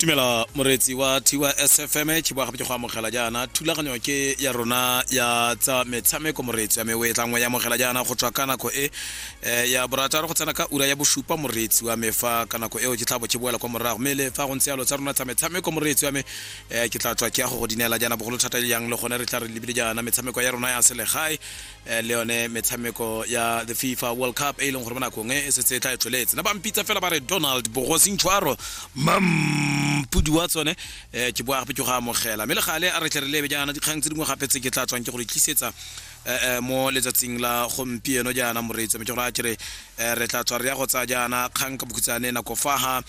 tumela moreetsi wa thiwa sfm ke boa gape ke go amogela jaana thulaganyo ke ya rona ya tsa metshameko moreetsi wa me o e tlangwe ya amogela jaana go tswa ka nako e eh, ya borataro go tsena ka ura ya bosupa moreetsi wa me fa ka nako eo ke tla bo ke boela kwa morago mme le fa go ntse yalo tsa rona tsa metshameko moreetsi wa me eh, ke tla tswa ke ya go go dinela jaana bogolo thata e yang le gone re tla re lebile jaana metshameko ya rona ya selegae Eh, le yone metshameko ya the fifa world cup e e leng gore mo nakong e e setse e tla e tlholetse na ba mpitsa fela ba re donald bogosintshwaro mampudi wa tsone um ke boa gape ke go amogela mme le gale a re tle re lebe jaana dikgang tse dingwe gape tse ke tla tswang ke go di tlisetsa eh, mo letsatsing la gompieno jaana moreetsi mme ke gore a kere re tla tswa re ya go tsaya jaana kgang ka bokhutsane nako fa ga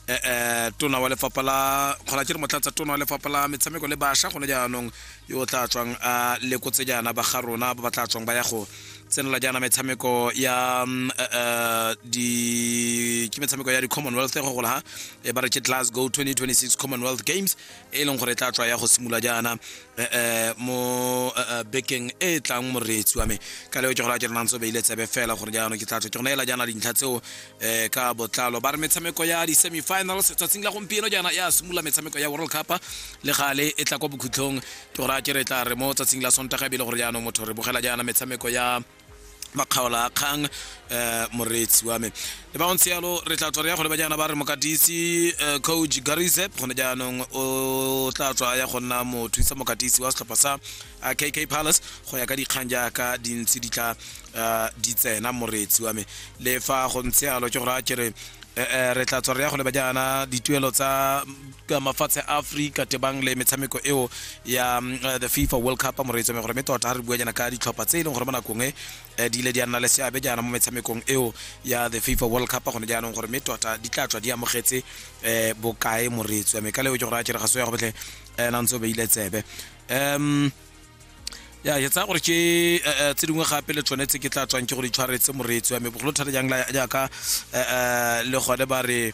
eh tona wa lefapha la kgona ke re motlatsa tona wa lefapha la metshameko le basha gone jaanong yo o tla tswang a lekotse jaana ba ga rona ba ba tla tswang ba ya go tsenela jaana metshameko ya mm, eh, eh, di ke metshameko ya di-commonwealth go gola ha e ba re ke glasgow 2026 commonwealth games e leng gore e tla tswa ya go simolola jaana eh, eh, mo eh, eh, bekeng e e tlang moreetsi wa me ka leo ke gola ke renang tso beile tsebe fela gore jaanong ke tla tswa ke go neela jaana dintlha tseo eh ka botlalo ba re metshameko ya di-semifinals tsatsing la gompieno jaana ya simolola metshameko ya world cup le gale e tla kwa bokhutlhong ke gore a ke re tla re mo tsatsing la sontaga ebile gore jaanong motho re bogela jaana metshameko ya makgaola a kgang um moreetsi wa me le ba ntse yalo re tla tswa re ya go leba jaana ba re mokatisi eh, coach garizep gone jaanong o tla tswa ya go nna mothusa mokatisi wa setlhopha sa a kk palace go ya ka dikgang jaaka di ntse di tla uh, di tsena moretsi wa me le fa go ntse alo ke gore a kere eh, eh, re tla tswa re ya go leba jaana dituelo tsa ka mafatshe a aforika tebang le metshameko eo ya mm, eh, the fifa world cup a moreetso me gore mme tota ga re bua jaana ka ditlhopha tse e leng gore mo nakong e eh, di ile di a nna le seabe jaana mo metshamekong eo ya the fifa world cup gone jaanong gore mme tota di tla tswa di amogetse um bokae moreetso me ka leo ke gore a kere ga se ya go botlhe um nantse o beile tsebe um ya ke tsaya gore ke eh, eh, tse dingwe gape le tshwanetse ke tla tswang ke go di tshwaretse moreetsi wa me bogolo thata jang la- jaaka eh, le gone ba re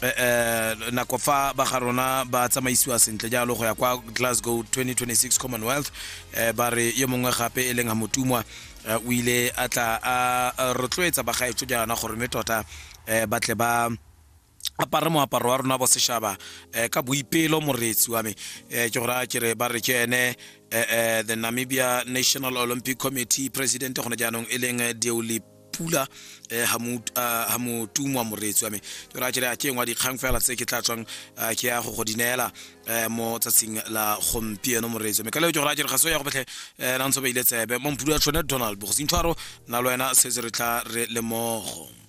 eh, eh, nako fa ba ga rona ba tsamaisiwa sentle jalo go ya kwa glasgow 2026 commonwealth eh, ba re yo mongwe gape e leng hamotumwa eh, o ile a tla a a rotloetsa bagaetso jaana gore mme tota eh, ba tle ba apare moaparo wa rona bo seshaba eh, ka boipelo moreetsi wa me eh, ke gore a kere ba re ke ene eh, the namibia national olympic committee president gone jaanong e leng deoli pula ga motumwa moreetsi wa me ke gore a kere a ke engwa dikgang fela tse ke tla tswang ke ya go go di neela mo tsatsing la gompieno moreetsi wa me ka leo ke gore a kere ga se ya go betlhe na ntse ba ile tsebe mo mpudu ya tshwane donald bogosinthwaro na le wena setse re tla re lemogo